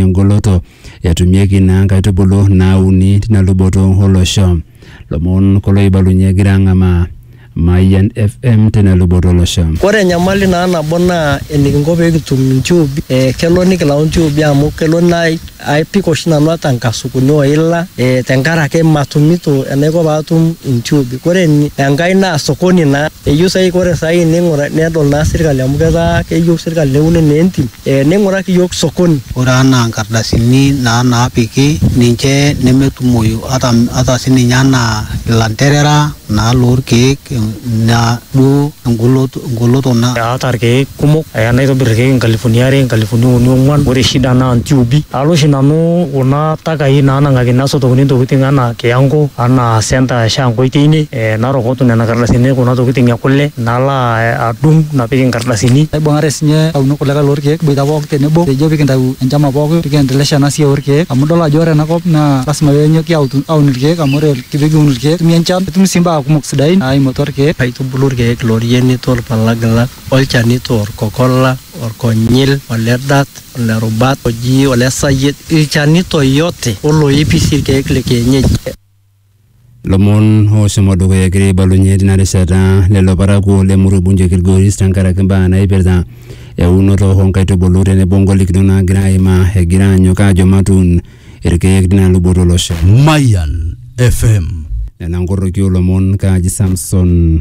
engoloto etumieki naa nkaitubulu naauni tina luboto olosho. Lomon kulo oibalunye egira ang'amaa Mayian FM tina luboto olosho. Ore enyamali naa nabo naa enikinko pee kitum intiubi, ee kelo nikilau intiubi amu kelo nai apik oshi nanu ata inkasukuni o ila ee tenkaraki matumito enaiko paatum intiubi. Kore enkae naa sokoni naa Eyieu sai ore sai ning'ura nedol naa sirkali amu ketaa keyieu sirkali neuni naa entim, eh ning'uraki iyiok sokoni. Ore anaa nkardasini naa naapiki ninche nemetumoyu ata, ata sininye anaa ilanterera naa lolkeek naa duo engoloto, engoloto na. Aata ilkeek kumok aya naitobir ilkeek inkalifuni are, inkalifuni uni ong'uan. Ore shida naa ntiubi. Alo oshi nanu kuna takai naanang'akini asotokini ntokitin anaa kiyango, anaa centre e Shankoy teine. eh, narokotu nena kardasini kuna tokitin e kule nalo a- adung napik inkardasini Naibung'are sinye aunu kulikae lorkeek boita pooki tenebo pejo pikintau enchama pooki pikiendelesha ena siai orkeek amu idol ajo ore enakop naa lasima penyoki autu aun irkeek amu ore pikiun irkeek etumi enchan netumi sii imbaa kumok sidain naimu atua irkeek aitubulu irkeek lorienito ilpalagilak olchanito orkokola orkonyil ole dat ole rubat oji ole sayiet ilchanito yote oloipi sii irkeek le kienyeji Lomon oshomo dukuya egira aibalunye tina rishata lelo parakuo le Murui Bunju Kilgoris tenkaraki mbaa naipirta eunoto oo nkaitubulu tenebo ngolikinot naagira aimaa egira aanyok aajo matuun irkeek tina luboto olosho. Mayan FM. Nena nkorroki oolomon kaaji Samson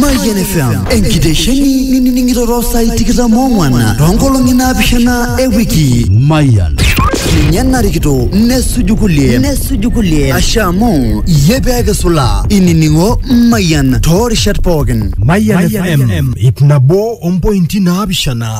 Mayian FM enkitesheni nining'iroro saai tikitam oong'wan toonkolong'i naapishana e wiki. Mayian. Ninye narikito nesuju kulie nesuju kulie ashe amu iyie pee kisula inining'o Mayian toorishat pookin. Mayian FM ip nabo ompointi naapishana.